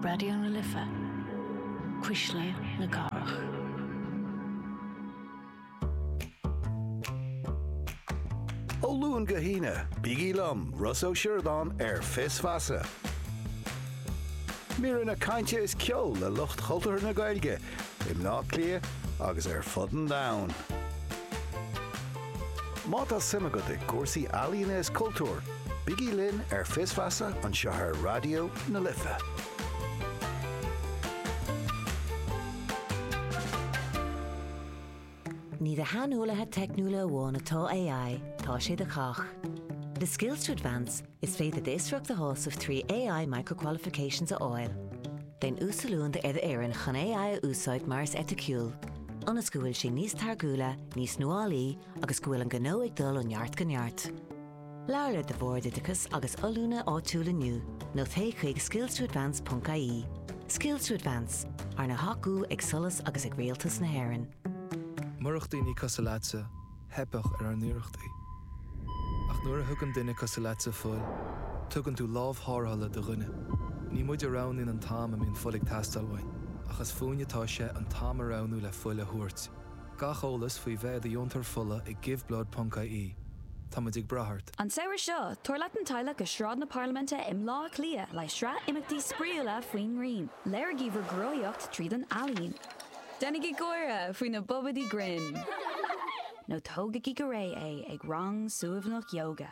Raidió na Life, Cuisle na Cathrach. Ó Luain go hAoine, bígí liom, Ros Ó Siordáin ar Fios Feasa. Míreanna cainte is ceol le lucht chultúrtha na Gaeilge i mBleá Cliath agus ar fud an domhain. Má tá suim agat i gcúrsaí ealaíne is cultúir, bígí linn ar Fios Feasa anseo ar Raidió na Life. Ní do shaineolaithe teicniúla amháin atá AI, tá sé do chách. Le Skills to Advance, is féidir d'fhiosracht a shásamh trí AI Micro-Qualifications a fháil. Déan uasoiliúint ar d'fhoireann chun AI a úsáid go muiníneach is eiticiúil, ionas go bhfuil sé níos táirgiúla, níos nuálaí agus go bhfuil an gnó ag dul ó neart go neart. Labhair le do Bhord Oideachais agus Oiliúna áitiúil inniu nó téigh chuig skillstoadvance.ie. Skills to Advance, arna thacú ag solas agus ag Rialtas na hÉireann. Murach daoine cosúil leatsa, theipfeadh ar ár n-iarrachtaí. Ach nuair a thugann duine cosúil leatsa fuil, tugann tú lámh tharrthála do dhuine. Ní muid a roghnaíonn an t-am a mbíonn fuil ag teastáil uainn, ach is fúinn atá sé an t-am a roghnú le fuil a thabhairt. Gach eolas faoi bheith i do dheontóir fola ag Giveblood.ie. Táimid ag brath ort. An samhradh seo, tabhair leat an teaghlach go Sráid na Parlaiminte i mBleá Cliath le sraith imeachtaí spraíúla faoin ngrian. Léirigí bhur gcruthaíocht tríd an ealaín. Déanaigí gáire faoi na bobaidí grinn. Nó tógaigí go réidh é ag rang suaimhneach ióga.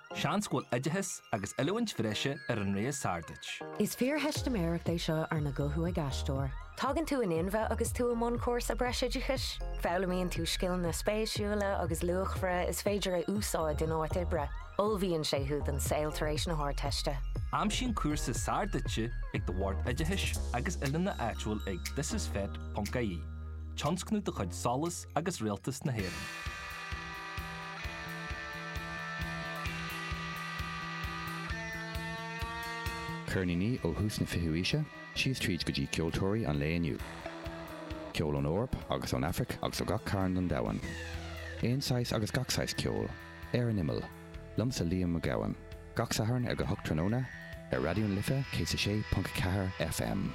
Seans go bhfuil oideachas agus oiliúint bhreise ar an rogha is fearr duit. Is fíortheistiméireacht é seo arna ghuthú ag aisteoir. Tagann tú in inmhe agus tú i mbun cúrsa breisoideachais. Foghlaimíonn tú scileanna spéisiúla agus luachmhara is féidir a úsáid in áit oibre. Ullmhaíonn sé thú don saol tar éis na hArdteiste. Aimsigh an cúrsa is fearr duitse ag do Bhord Oideachais agus Oiliúna áitiúil ag thisisfet.ie, tionscnamh de chuid solas agus Rialtas na hÉireann. Ceirníní ó thús na fichiú haoise síos tríd go dtí ceoltóirí an lae inniu. Ceol ón Eoraip agus ón Afraic agus ó gach cearn den domhan. Aon saghas agus gach saghas ceoil. Ar an Imeall. Liomsa Liam Mac Gabhann. Gach Satharn ag a hocht tráthnóna, ar Raidió na Life 106.4 FM.